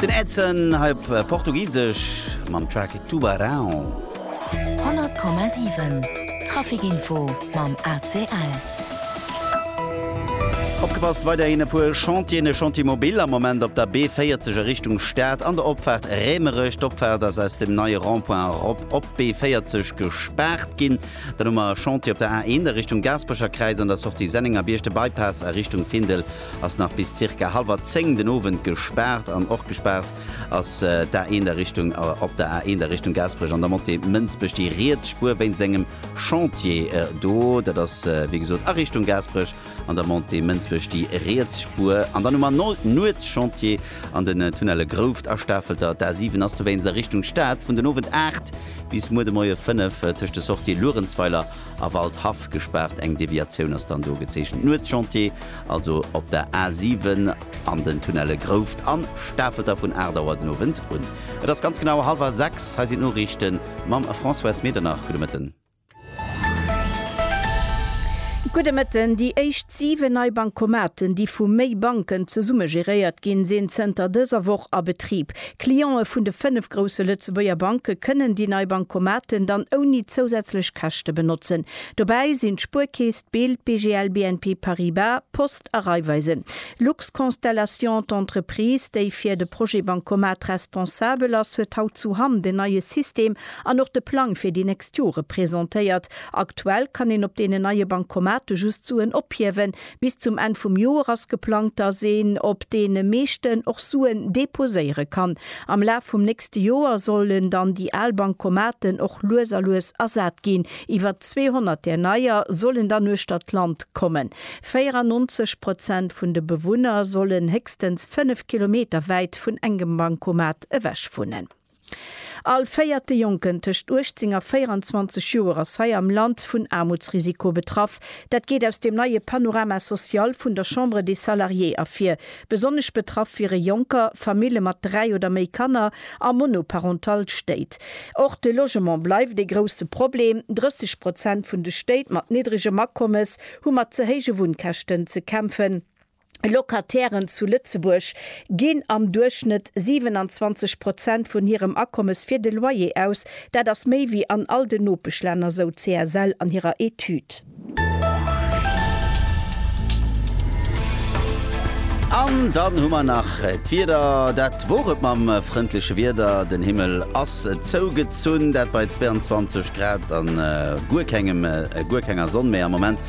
Den Edson, hei op Portugisesch, mam Track Tubarão. 100,7 Trafikinfo mam ACL. Opgepasst, weiderhin e puer Chantieren, e Chantier mobile am Moment op der B40 a Richtung Stad an der Opfaart Rämerech. D'Opfaart ass aus dem neie Rond-point erop op d'B40 gespaart ginn. Dann hu mer e Chantier op der A1 a Richtung Gaasperecher Kräiz an der Sortie Sennengerbierg, de Bypass a Richtung Findel ass nach bis zirka hallwer 10 den Owend gespaart an och gespaart ass d'A1 der Richtung op der A1 der Richtung Gaasperech an der Montée Mënsbech déi riets Spuer wéinst engem Chantier do. Dat ass wéi gesot a Richtung Gaasperech an der Montée Mënsbech déi riets Spuer an dann hu mer no Nuetschantier an den Tunnelle Grouft a Stafelter. D'A7 ass dowéinst a Richtung Stad vun den Owend 8 bis muer de Moie 5 tëscht de Sortië Luerenzweiler A Waldhaff gespaart, eng Deviatioun ass dann do gezeechent. Nuetschantier also op der A 7 an den Tunnelle Grouft an Stafelter vun 8 Auer den Owend un. Et ass ganz genau hallwer 6. Hei sinn d'Noriichte mam Françoise Medernach. Gudde Mëtten. Gudde Mëtten. Déi éischt 7 nei Bancomaten, déi vu méi Banken zesumme geréiert ginn, sinn zënter dëser Woch a Betrib. D'Cliente vun de fënnef grousse Lëtzebuerger Banke kënnen déi nei Bancomaten dann ouni zousätzlech Käschte benotzen. Dobäi sinn d'Spuerkeess, d'Bild, BGL, BNP Paribas, d'Post a Raiffeisen. Luxconstellation, d'Entreprise, déi fir de Projet Bancomat responsabel ass, huet haut zu Hamm den neie System an och de Plang fir déi nächst Jore presentéiert. Aktuell kann een op deenen neie Bancomaten just Suen ophiewen. Bis zum Enn vum Joer ass geplangt, dass een op deene meeschten och Suen deposéiere kann. Am Laf vum nächste Joer sollen dann déi al Bankomaten och lues a lues ersat ginn. Iwwer 200 där neier sollen dann uechter d'Land kommen. 94 Prozent vun de Bewunner sollen héchstens 5 Kilometer wäit vun engem Bankomat ewech wunnen. All véierte Jonken tëscht 18 a 24 Joer ass hei am Land vun Aarmutsrisiko betraff. Dat geet aus dem neie Panorama social vun der Chambre des Salariés ervir. Besonnesch betraff wiere Jonker, Famille mat dräi oder méi Kanner a monoparental Stéit. Och de Logement bleift ee grousse Problem. 30 Prozent vun de Stéit mat niddregem Akommes hu mat ze héije Wunnkäschten ze kämpfen. Locatairen zu Lëtzebuerg ginn am Duerchschnëtt 27 Prozent vun hirem Akommes fir de Loyer aus. Dat ass méi wéi an all den Nopeschlänner, sou d'CSL an hirer Etüd. An dann hu mer nach d'Wieder. Dat wor et mam frëndleche Wieder. Den Himmel ass zougezunn, dat bei 22 Grad a guer kenger Sonn méi am Moment.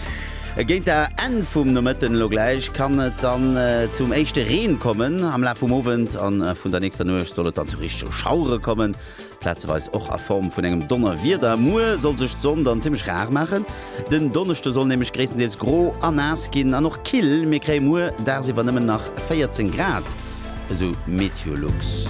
Géint der Enn vum Nomëtten elo gläich kann et dann zum éischte Reen kommen. Am Laf vum Owend a vun der nächster Nuecht soll et dann zu richtege Schauere kommen, plazeweis och a Form vun engem Donnerwieder. Muer soll sech d'Sonn dann zimmlech rar maachen. Den Donneschde soll nämlech gréisstendeels gro a naass ginn an och kill. Mir kréie muer dagsiwwer nëmmen nach 14 Grad, esou MeteoLux.